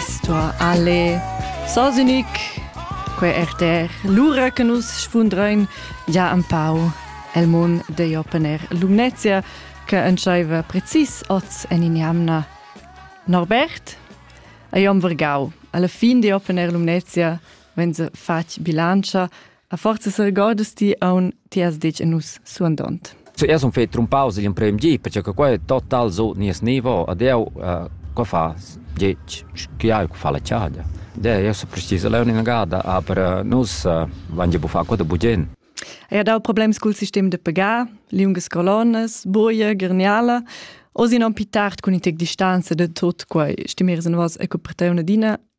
Sto alle Sosinik que RTR lura che nus sfundrein ja un pau el mon de Jopener Lumnezia che entscheiva precis oz en in jamna Norbert a Jon Vergau alla fin di Opener Lumnezia wenn se fatg bilancia A forza seregordas ti aun ti has detg a nus suandont. Zuerst sun fet trumpaus igl emprem gi, perché che quei total so nies nivo ad eu uh, qua fa gec chiai cu fa la chada. De, eu so precis leu in gada, aber uh, nus uh, van ge bufa qua da bugen. Era dau problems cul sistem de pagar, liungas colonas, boia, gerniala, osi non pi tard cun i tec distanza de tot quei, stimeres en vos e coperteuna dina,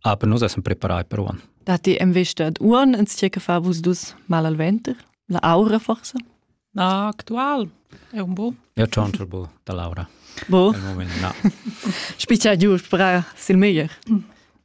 Aber nus essem preparai per uon. Dati im vista ad uon ins che fa vus dus mal al venter? La aura forse? Na, actual è un bo. Io c'ho un turbo da Laura. Bo? Al moment, no. Spicia giù spera sil meglier.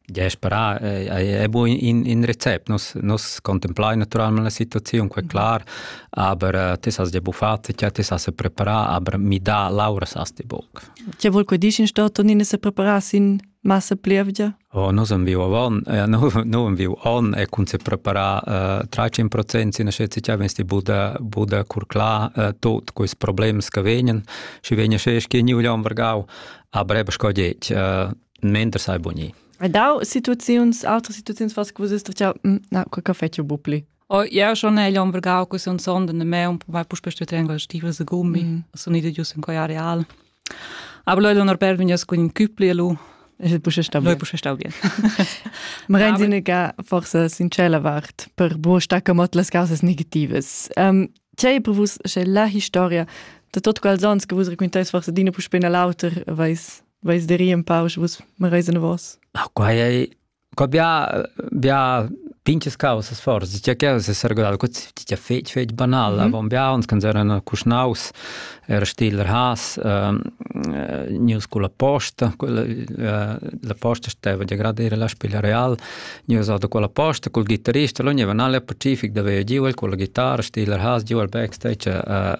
Ja, spera è buo in in recept. Nus nus contemplai naturalmente la situazione, què clar, aber te sas ja buffat, ja te sas preparà, aber mi da Laura sas ti boc. Che vuol que dici in sto Tonine se preparà sin massa plievgia? Oh, nos am viu avon, eh, no am viu on e kun se preparar uh, 30% sina scetsi cha vensti buda buda curcla uh, tot quis problems che vegnen și vegna se schi ni uglion vergau a brebe scoget uh, mender sai boni. Dau situaziuns, altre situaziuns fas così sta cha mm, na, quel caffè ci bupli. Oh, ja schon egl on vergau que sun sonda ne me un po mai puspe ste tenga stivel se gummi mm. sun ide gius in coia real aber leu on per vegnas cun in küpli lu Es pushe stau Noi pushe stau bien. Merenzine ga forse sincera vart per bo stacca mot las causas negativas. Um, C'è prevus c'è la historia da tot quals ans che vus raccontais forse d'ina puspe na l'auter vais vais de ri un pau, vus me reisen vos. Ah, qua è co bia bia pinches causas forsa tgei causa sergudada co tgei fetg fetg banal mhm. avon bia uns cans eran cuschnaus era stil has ehm, eh, news con la posta eh, la posta steva di gradire la spiglia real news da quella posta col gitarrista l'ogni vanale pacific da veo giu con la chitarra stil has giu al backstage eh,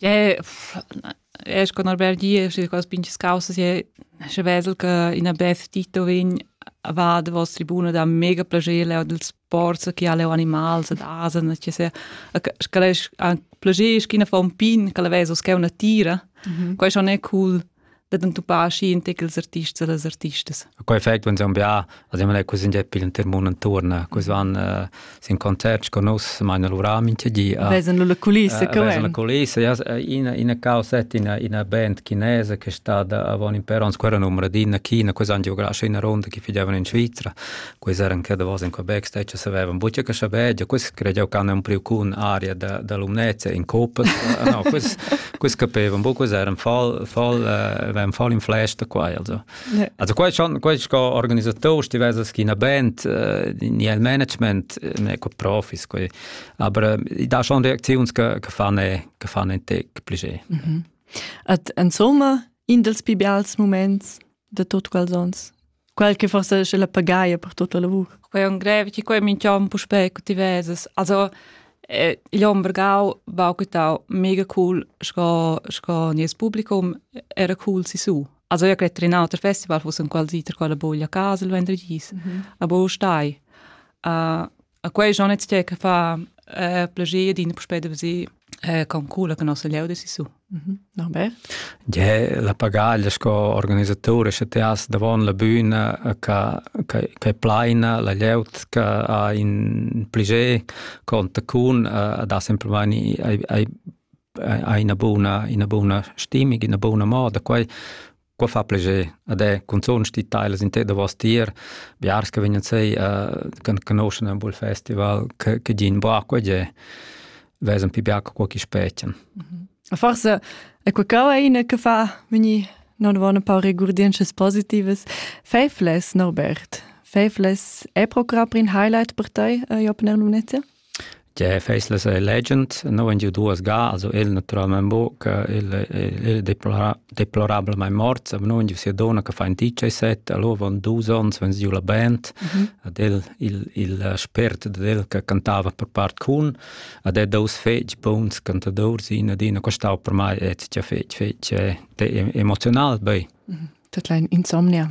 Jé es con al bel dir, schi cos pinchas causas, jé sche vesel che ina bef Tito vegn va davos tribuna da mega plager leu dils sports che ha leu animals ed asen, che se sch'el es anc plager, sch'ina fa un pin, che la vesa uschè una tira. Quai schon è cool. dad entupar schi in tec ils artists e las artistas. Quei effect van san bia, ad emma così in pil inter mondo intorno, così van uh, sin concert con nus, ma in lura mincha di. Uh, vesan la culissa, uh, vesan la culissa, ja, ina ina causa ina ina band chinese che è stata avon in per ons quella numero di in China, così han giocado in ronda che fidavano in Svizzera. quei eran che davos in Quebec stecha savevan buca che saber ja quis credeau can un priu cun aria da da lumnezza in copas no quis quis capevan bu quis eran fall fall eran fall in flash da quai also also quai schon quai sco organisator stivesa schina band ni el management ne co profis quei aber da schon reaktions che che fanne che fanne te plige At insomma in dels pibials moments da tut quels ons. Quel che forse è la pagaia per tutto il lavoro. Quei è un greve, ti quei minchiom puspei cu ti veses. Also, eh, il Ombergau va quitau mega cool sco, sco nies publicum era cool si su. Also io credo in altri festival fosse un qualsiter quella boglia a casa il vendredì. Mm -hmm. Aber stai. Uh, A quei Jonet che che fa eh, plagier din puspei de si eh, con cula che nossa lieu de su. Mhm. Norbert? Ja, la pagaglia sco organisatore sche ti has davon la bühna che che plaina la lieut che ha in pliger conta con da semplicemente hai una buona una buona stimmig una buona moda quai Qua fa plascher ad è cunzunt sti tailas in te da vos tier, biars che vegnan sei uh, conoscen un bull festival che che gin bra qua ge vesan pi biac qua chi spechan. Mhm. Forse è qualcosa ina che fa mini non vanno pa regurdiences positives. Faithless, Norbert. Faithless è programm in highlight per te, uh, Jopen Erlum Nettia? Tgei faislas ei legend? Neu han giu duas ga, also el naturalmein buc, il il deplora deplorabelmein morts, aber neu han giu sia donna che fa in diciasset, allora van dus onns, van giu la band, ad el il il spert dad el che cantava per part cun, ad el dus fetg buns cantadurs, in ed in ha costau per mei etg fetg fetg emoziunal bei. Tut ein insomnia.